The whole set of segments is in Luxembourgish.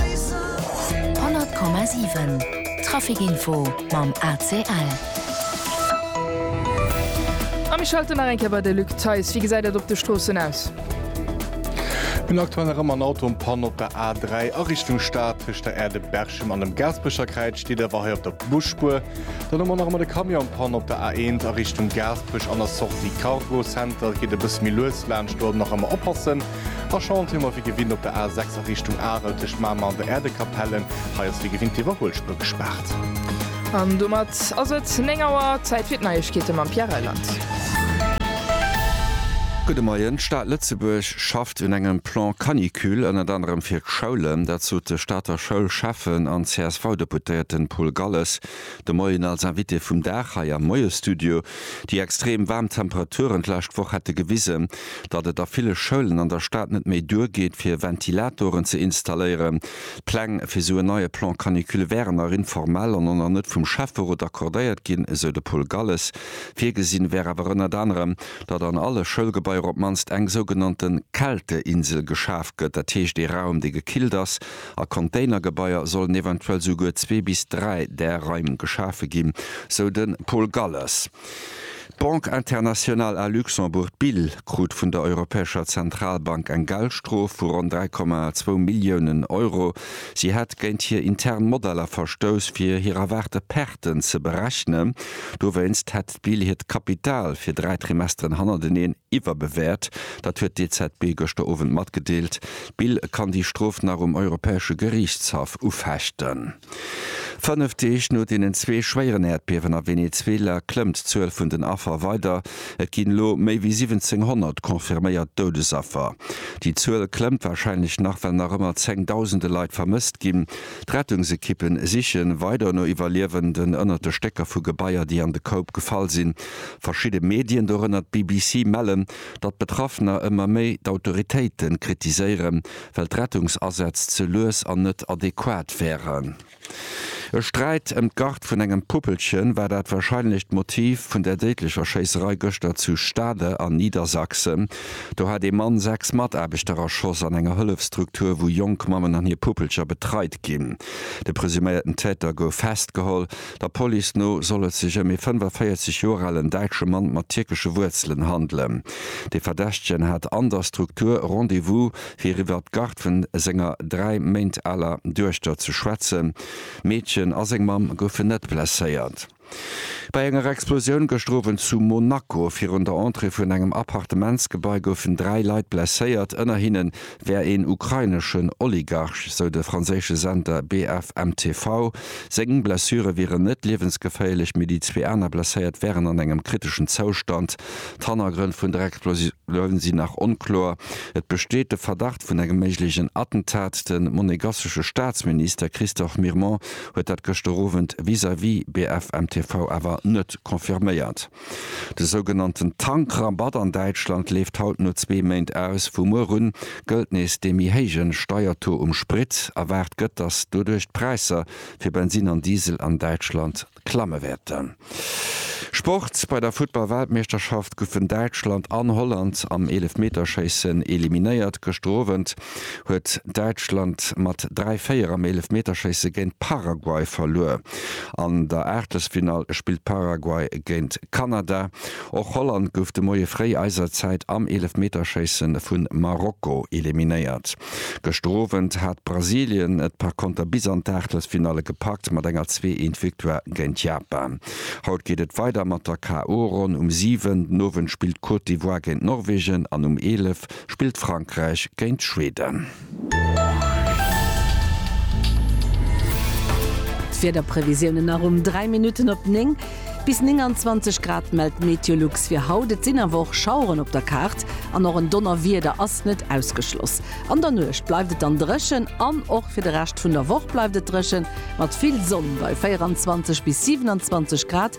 100,7 Trafic Info mam ACL. A mir schalten nach eng Kéier bei de Luc Theis. Wéi gesäit et op de Stroossen aus? Hunn aktuell nach ëmmer en Auto en Panne op der A3 a Richtung Stad. Tëscht der Aire de Berchem an dem Gaasperecherkräiz steet awer hei op der Busspuer. Dann hu mer nach ëmmer de Camion en Panne op der A1 a Richtung Gaasperech. An der Sortie Cargo Center geet e bësse méi lues laanscht, do nach ëmmer oppassen. A Schond hu mer wéi gewinnt op der A6 a Richtung Arel tëscht Mamer an der Erdekapellen. Hei ass wéi gewinnt d'Iwwerhuelspur gespaart. An domat ass et 9 Auer. Zäit fir d'Neiegkeete mam Pierre Reyland. Gudde Moien. D'Stad Lëtzebuerg schafft un engem Plan Canicule, ënnert anerem fir d'Schoulen. Dat sot de Stater Schoulschäffen an CSV-Deputéierten Paul Galles de Moien als Invité vum Dag hei am Moie-Studio. Déi extrem waarm Temperaturen d'lescht Woch hätte gewisen, datt et a ville Schoulen an der Stad net méi duergeet fir Ventilatoren ze installéieren. D'Pläng fir esou en neie Plan canicule wären nach informell an oner net vum Schäfferot accordéiert ginn, esou de Paul Galles. Virgesinn wär awer ënnert anerem, datt an alle Schoulgebaier op d'mannst eng sougenannte Kälteinsel geschaf gëtt, dat heescht ee Raum dee gekillt ass. A Containergebaier sollen eventuell esouguer zwee bis dräi där Raim geschafe ginn, sou de Paul Galles. D'Banque internationale à Luxembourg, BIL, krut vun der Europäescher Zentralbank eng Geldstrof vu ronn 3,2 Milliounen Euro. Si hätt géint hir intern Modeller verstouss, fir hir erwaarte Perten ze berechnen. Dowéinst hätt d'BIL hiert Kapital fir dräi Trimesteren hannerteneen iwwerbewäert. Dat huet d'EZB gëschter Owend matgedeelt. D'BIL kann déi Strof nach um Europäesche Geriichtshaff ufechten. Fënnef Deeg no deenen zwee schwéieren Äerdbiewen a Venezuela klëmmt d'Zuel vun den Affer weider. Et ginn elo méi wéi 1.700 confirméiert Doudesaffer. Déi Zuel klëmmt warscheinlech nach, well nach ëmmer zéng Dausende Leit vermësst ginn. D'Rettungsekippe siche weider no Iwwerliewenden ënnert de Stécker vu Gebaier, déi an de Koup gefall sinn. Verschidde Medien, dorënner d'BBC, mellen, datt Betraffener ëmmer méi d'Autoritéite kritiséieren, well d'Rettungsasätz ze lues an net adequat wären. E Sträit ëm d'Garde vun engem Puppelche war dat warscheinlecht Motiv vun der déidlecher Schéisserei gëschter zu Stade a Niedersachsen. Do hat ee Mann sechs Mataarbechter erschoss an enger Hëllefsstruktur, wou jonk Mammen an hir Puppelcher betreit ginn. De presuméierten Täter gouf festgeholl Der Police no soll et sech ëm ee 45 Joer alen däitsche Mann mat tierkesche Wuerzelen handelen. De Verdächtegen hat an der Struktur Rendez-vous, fir iwwer d'Garde vun senger dräi Méint aler Duechter ze schwätzen. D'Meedchen a seng Mamm goufen net blesséiert. Bei enger Explosioun gëschter Owend zu Monaco virun der Entrée vun engem Appartementsgebai goufen dräi Leit blesséiert, ënner hinnen wär een ukraineschen Oligarch, sou de franséische Sender BFMTV. Seng Blessure wieren net liewensgeféierlech, mee déi zwee aner Blesséiert wären an engem kriteschen Zoustand. D'Hannergrënn vun der Explosioun sinn nach onkloer. Et besteet de Verdacht vun engem méiglechen Attentat. De monegassesche Staatsminister Christophe Mirmont huet dat gëschter Owend vis-à-vis BFMTV awer net confirméiert. De sougenannten Tankrabatt an Däitschland leeft haut no zwee Méint aus. Vu muer un gëllt nees dee méi héije Steiertaux um Sprit. Erwaart gëtt, datt doduerch d'Präisser fir Bensin an Diesel an Däitschland klamme wäerten. Sport, Bei der Futtball-Weltmeeschterschaft goufen Däitschland an Holland am Eelefmeterschéissen eliminéiert. Gëschter Owend huet Däitschland mat 3, 4 am Eelefmeterschéisse géint Paraguay verluer. An der Aachtelsfinall spillt Paraguay géint Kanada. Och Holland gouf de Moie fréi eiser Zäit am Eelefmeterschéisse vu Marokko eliminéiert. Gëschter Owend hat Brasilien et par konter bis an d'Aachtelsfinalle gepackt mat enger zwee eent Victoire géint Japan. Haut geet et weider mat der KO-Ronn. Um 7 den Owend spillt d'Côte d'Ivoire géint Norwegen an um 11 spillt Frankräich géint Schweden. D'Wiederprevisiounen nach um 3 Minutten op 9. Bis 29 Grad mellt d'Meteolux fir haut. Et sinn awer och Schaueren op der Kaart an och en Donnerwieder ass net ausgeschloss. An der Nuecht bleift et dann dréchen an och fir de Rescht vun der Woch bleift et dréchen, mat vill Sonn bei 24 bis 27 Grad.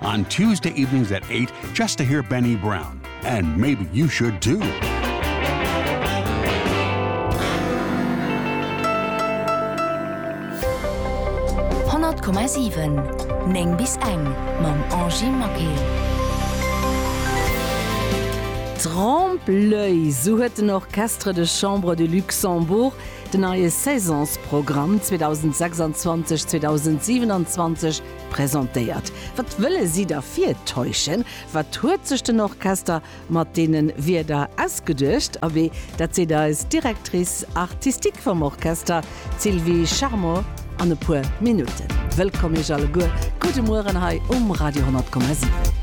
On Tuesday evenings at eight just to hear Benny Brown and maybe you should too. Néng bis eng mam Angy Maquet. Trompe-l'oeil, sou huet den Orchestre de Chambre du Luxembourg den neie Saisonsprogramm 2026, 2027, Presentéiert. Wat wëlle si da virtäuschen? Wat huet sech den Orchester mat deene Wierder ausgeduecht? Abee, dat seet eis Directrice artistique vum Orchester, d'Sylvie Charmot, an e puer Minutten. Wëllkomm Iech alleguer, gudde Mueren hei um Radio 10,7.